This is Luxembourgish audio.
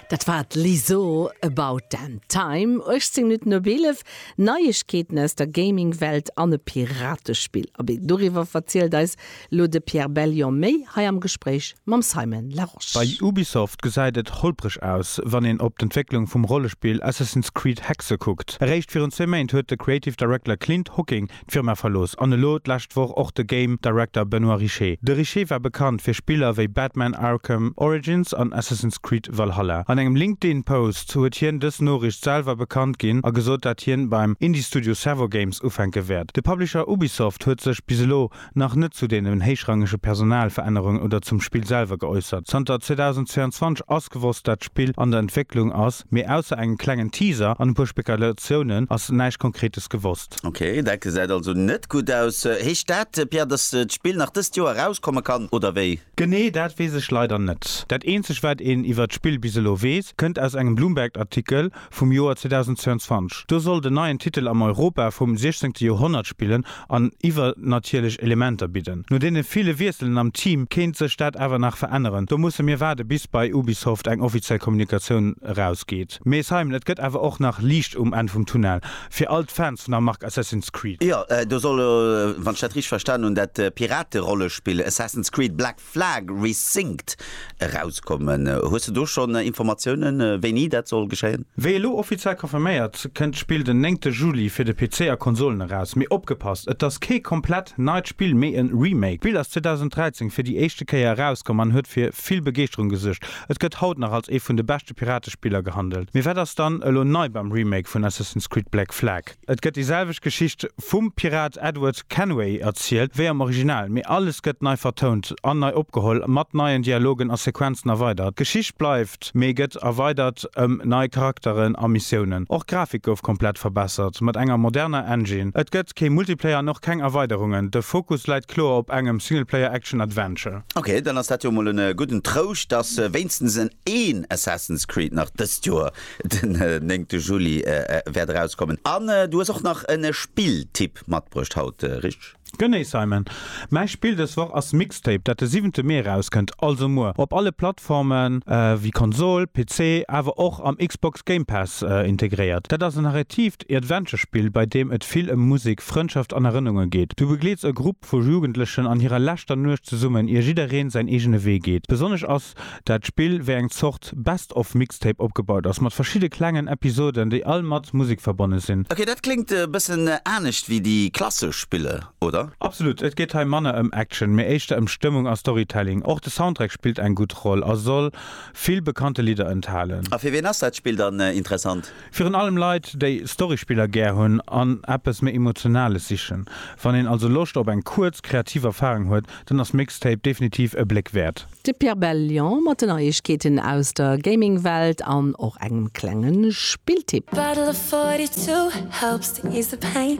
Dat war d'Lizzo, About Damn Time. 18 Minutten op 11, Neiegkeeten aus der Gaming-Welt an e Piratespill. Abee, doriwwer verzielt eis elo de Pierre Bellion méi hei am Gespréich mam Simon Larosche. Bei Ubisoft gesäit et holpreg aus, wann een op d'Entwécklung vum Rollespill Assassin's Creed Hexe kuckt. Eréischt virun zwee Méint huet de Creative Director Clint Hocking d'Firma verlooss an elo d'lescht Woch och de Game Director Benoit Richer. De Richer war bekannt fir Spiller wéi Batman Arkham Origins an Assassin's Creed Valhalla. An engem LinkedIn Post huet hien dës Noriicht selwer bekannt ginn a gesot dat hien beim Indie-Studio Servo Games ufänke wäert. De Publisher Ubisoft huet sech bis elo nach net zu deenen héichrangege Personalverännerungen oder zum Spill selwer geäussert. Zanter 2022 ass gewosst dat d'Spill an der Entwécklung ass, mee ausser engem klengen Teaser an e puer Spekulatiounen ass näischt Konkretes gewosst. geklappt. Ok, dat gesäit also net gutt aus. Heescht dat, Pierre, dass d'Spill nach dëst Joer erauskomme kann, oder wéi? Genee dat weess ech leider net. Dat eenzegt wat een iwwert d'Spill bis elo weess, kënnt aus engem Bloomberg-Artikel vum Joer 2022. Do soll den neien Titel am Europa vum 16. Joerhonnert spillen an iwwernatierlech Elementer bidden. No deene ville Wiesselen am Team kéint sech dat awer nach veränneren. Do musse mir waarde bis bei Ubisoft eng offiziell Kommunikatioun erausgeet. Mee Simon, et gëtt awer och nach Liicht um Enn vum Tunnel. Fir all d'Fans vun der Mark Assassin's Creed. Jo, do soll elo, wann ech dat richteg verstanen hunn, dat Pirate-Rollespill Assassin's Creed Black Flag Resynced erauskommen. Hues de do schonn Informatiounen, wéini dat soll geschéien? Wéi elo offiziell confirméiert, kënnt d'Spill den néngte Juli fir de PC a Konsolen eraus. Mee opgepasst, et ass kee komplett neit Spill, mee e Remake. D'Spill ass 2013 fir déi éischte Kéier erauskomm an huet fir vill Begeeschterung gesuergt. Et gëtt haut nach als ee vun de beschte Piratespiller gehandelt. Mee wat ass dann elo nei beim Remake vun Assassin's Creed Black Flag? Et gëtt déi selwecht Geschicht vum Pirat Edward Kenway erzielt wéi am Original, mee alles gëtt nei vertount an nei opgeholl, mat neien Dialogen a Sequenzen erweidert. D'Geschicht bleift, mee gëtt erweidert ëm nei Charakteren a Missiounen. Och d'Grafik gouf komplett verbessert, mat enger moderner Engine. Et gëtt kee Multiplayer an och keng Erweiderungen, de Fokus läit kloer op engem Singleplayer Action Adventure. Ok, dann ass dat jo mol en gudden Trouscht, dass wéinstens en een Assassin's Creed nach dëst Joer den néngte Juli wäert erauskommen. An du hues och nach en Spilltipp matbruecht haut, richteg? Genee Simon, mäi Spill dës Woch ass Mixtape, dat de siwente Mee erauskënnt, also muer, op alle Plattforme wéi Konsol, PC, awer och am Xbox Game Pass integréiert. Dat ass en Arrêtiv, Heescht e Adventure-Spill, bei deem et vill ëm Musek, Frëndschaft an Erënnunge geet. Du begleets e Grupp vu Jugendlechen an hirer leschter Nuecht zesummen, ier jiddereen säin eegene Wee geet. Besonnesch ass dat Spill wéi eng Zort Best of Mixtape opgebaut ass, mat verschidde klengen Episoden, déi all mat Musek verbonne sinn. Ok, dat kléngt e bëssen anescht wéi déi klassesch Spiller, oder? Absolut. Et geet hei manner ëm Action, mee éischter ëm Stëmmung a Storytelling. Och de Soundtrack spillt eng gutt Roll a soll vill bekannte Lidder enthalen. A fir wien ass dat Spill dann interessant? Virun allem Leit, déi Storyspiller gär hunn an eppes méi Emotionales sichen. Wann een also Loscht op eng kuerz, kreativ Erfarung huet, dann ass Mixtape definitiv e Bléck wäert. De Pierre Bellion mat de Neiegkeeten aus der Gaming-Welt an och engem klenge Spilltipp. Bottle of 42 helps to ease the pain.